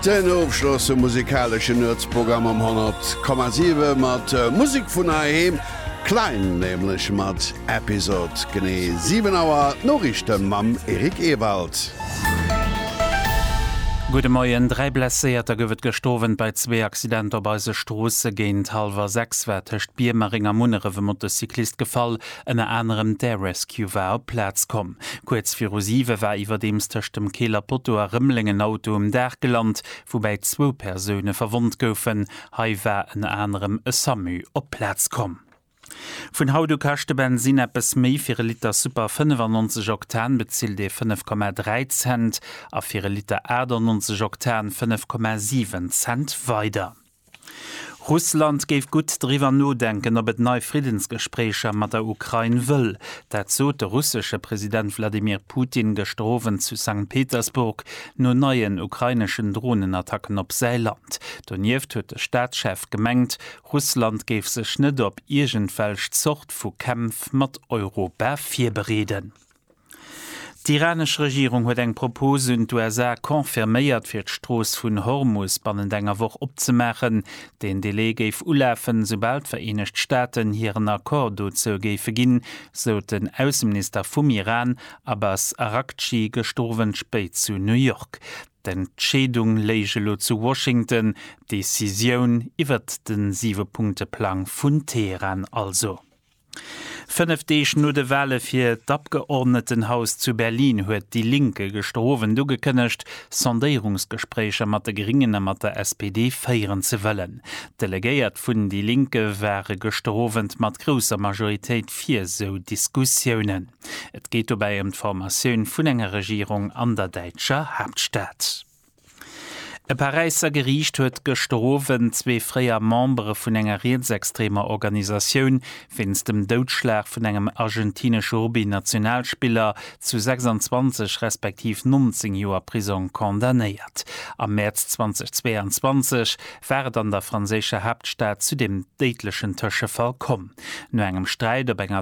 Den Ofschloss vum musikaleschen Nuetsprogramm um 100,7 mat Musek vun heiheem, Klein nämlech mat Episode. Genee 7 Auer d'Noriichte mam Eric Ewald. Gudde Moien. Dräi Blesséierter gouf et gëscht Owend bei zwee Accidenter op eise Stroosse. Géint hallwer 6 war tëscht Biermereng a Munneref e Motocyclist gefall. Ënner anerem d'Air Rescue war op d'Plaz komm. Kuerz viru siwe war iwwerdeems tëscht dem Keeler Potto a Rëmeleng en Auto um Daach gelant, woubäi zwou Persoune verwonnt goufen. Hei war ënner anerem e Samu op d'Plaz komm. Vun haut u kascht de Bensinn eppes méi, fir e Liter Super 95 Oktan bezilt ee 5,3 Cent a fir e Liter 98 Oktan 5,7 Cent weider. Russland géif gutt driwwer nodenken, ob et nei Friddensgespréicher mat der Ukrain wëll. Dat sot de russesche President Wladimir Putin gëschter Owend zu Sankt Petersburg no neien ukraineschen Dronenattacken op säi Land. Donieft huet de Staatschef gemengt, Russland géif sech net op iergendwelch Zort vu Kämpf mat Europa virbereeden. D'iranesch Regierung huet eng Propose un d'USA confirméiert, fir d'Strooss vun Hormus bannent enger Woch opzemaachen. Deen Delai géif ulafen, soubal d'Vereenegt Staaten hiren Accord dozou géife ginn, sot den Ausseminister vum Iran Abbas Araghchi gëschter Owend spéit zu New York. D'Entscheedung léich elo zu Washington, d'Decisioun iwwert de Siwe-Punkte-Plang vun Teheran also. Fënnef Deeg no de Wale fir d'Abgeordnetenhaus zu Berlin huet déi Linke gëschter Owend ugekënnegt, Sondéierungsgespréicher mat de Gringen a mat der SPD féieren ze wëllen. D'Delegéiert vun déi Linke ware gëschter Owend mat grousser Majoritéit fir esou Diskussiounen. Et geet dobäi ëm d'Formatioun vun enger Regierung an der däitscher Haaptstad. E Paräisser Geriicht huet gëschter Owend zwee fréier Membere vun enger rietsextremer Organisatioun wéinst dem Doudschlag vun engem argentinesche Rugby-Nationalspiller zu 26 respektiv 19 Joer Prisong condamnéiert. Am Mäerz 2022 war et an der franséischer Haaptstad zu deem déidlechen Tëschefall komm. No engem Sträit op enger